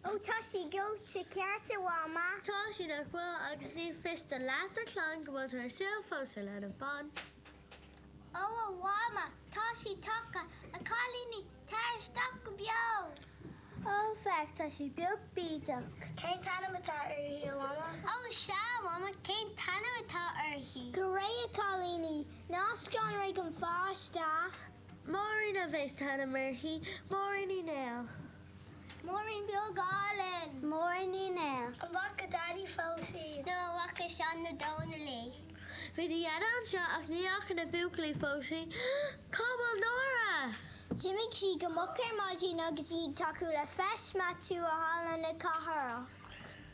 Ó tá sí gleoite ceart a Mhama. Tá sí nach bhfuil agus ní fios do leath do chlann go bhfuil tú ar an saol fós a leanbh bán. Ó a Mhama tá sí tagtha a chailíní tar isteach go beo. Ó féach tá sí beag bídeach. Cén t-ainm atá uirthi a Mhama? Ó sea a Mhama cén t-ainm atá uirthi? Go réidh a chailíní, ná scanraigh an pháiste. Máirín a bheas an t-ainm uirthi. Máirín Ní Néill. Máirín Beag Álainn. Máirín Ní Néill. An bhfaca Daidí fós í? Nó an bhfaca Seán nó Dónall í? Bhí bhur n-athair anseo ach ní fhaca na buachaillí fós í. Cá bhfuil Nóra? D'imigh sí go moch ar maidin agus í ag tacú le Feis Maitiú i halla na cathrach.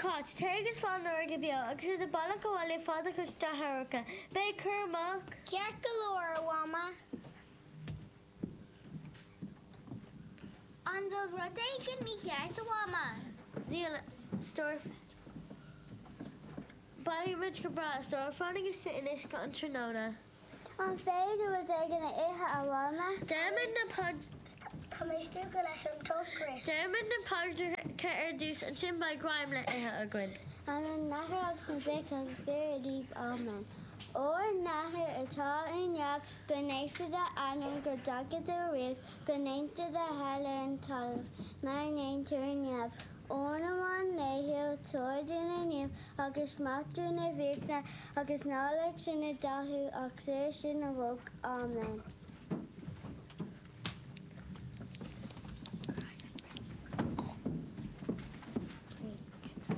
Cáit, téigh agus faigh Nóra go beo agus ar do bhealach abhaile faigh do chuid deartháireacha. Bí cúramach. Ceart go leor, a Mhama. An bhfuil rud éigin mícheart, a Mhama? Níl, a stór. Beidh muid go breá, a stór. Fanaigíse anois an tráthnóna. An féidir rud éigin a ithe a Mhama? Déarfaimid na paidreacha. Tá mé stiúgtha leis an ocras. Déarfaimid na paidreacha ar dtús, ansin beidh greim le ithe againn. In ainm an Athar agus an Mhic agus an Spioraid Naoimh Áiméan. Ár nAthair atá ar neamh, go naofar d'ainm, go dtaga do ríocht, go ndéantar do thoil ar an talamh mar a ndéantar ar neamh. Ár n-arán laethúil, tabhair dúinn inniu agus maith dúinn ár bhfiacha agus ná lig sinn i gcathú ach saor sinn ó olc. Áiméan. Craoladh an Breitheamh. Craoladh.